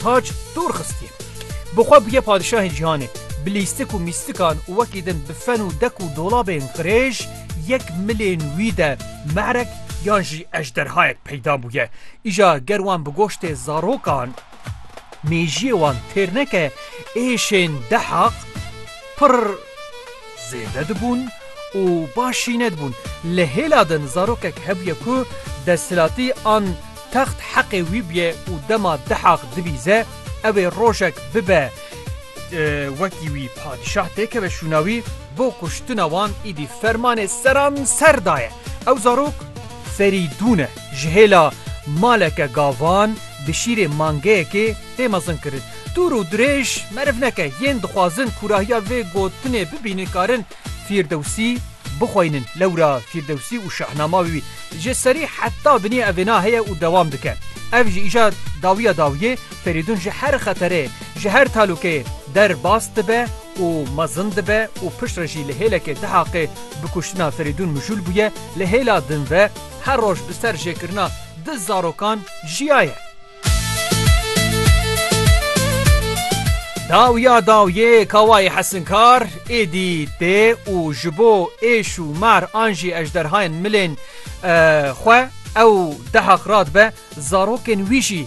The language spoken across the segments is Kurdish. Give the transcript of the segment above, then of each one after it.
Taç dûr xistiye. Bi xwe bûye padişahê cîhanê. Bi lîstik û mîstikan û wekî din bi fen û dek û dolabên qirêj yek milên wî de merek yan jî ejderhayek peyda bûye. Îja ger wan bi goştê zarokan mêjiyê wan têr neke êşên Dehaq pirr zêde dibûn û baş jî nedibûn. Li hêla din zarokek hebûye ku desthilatî an Text heqê wî bûye û dema Dihaq dibîze ew ê rojek bibe wekî wî padîşah têkeve şûna wî, bo kuştina wan îdî fermanê seranser daye. Ew zarok. Ferîdûn e. Ji hêla maleke gavan bi şîrê mangeyekê tê mezinkirin. Dûr û dirêj meriv neke yên dixwazin kûrahiya vê gotinê bibînin karin Fîrdewsî bixweynin, lewra Fîrdewsî û Şahnama wî ji serî heta binê ev vêna heye û dewam dike. Ev ji îja dawiya dawiyê Ferîdun ji her xeterê, ji her talûkeyê der bas dibe û mezin dibe û pişt re jî li hêlekê Dihaqê bi kuştina Ferîdun mijûl bûye, li hêla din ve her roj bi ser jêkirina du zarokan jiyaye. Dawiya dawiyê Kawayê Hesinkar êdî tê û ji bo êş û mar an jî ejderhayên milên xwe ew dehaq radibe zarokên wî jî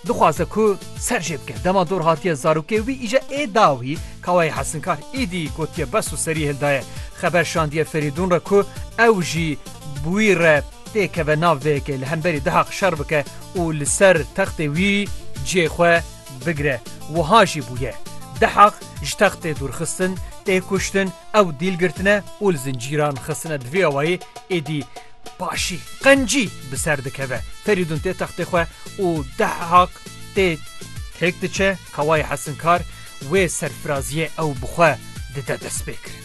dixwaze ku ser jê bike. Dema dor hatiye zarokê wî îje ê dawî Kawayê Hesinkar êdî gotiye bes û serî hildaye. Xeber şandiye Ferîdûn re ku ew jî bi wî re tê keve nav vê yekê li hemberî dihaq şer bike û li ser textê wî cihê xwe bigire. Wiha jî bûye. Dihaq ji textê dûrxistin, tê kuştin, ew dîl girtine û li zincîran xistine di vê awayî êdî paşî, qencî bi ser dikeve. Ferîdûn tê textê xwe û Dihaq tê têk diçe kawayê hesinkar wê serfiraziyê ew bi xwe dide destpêkirin.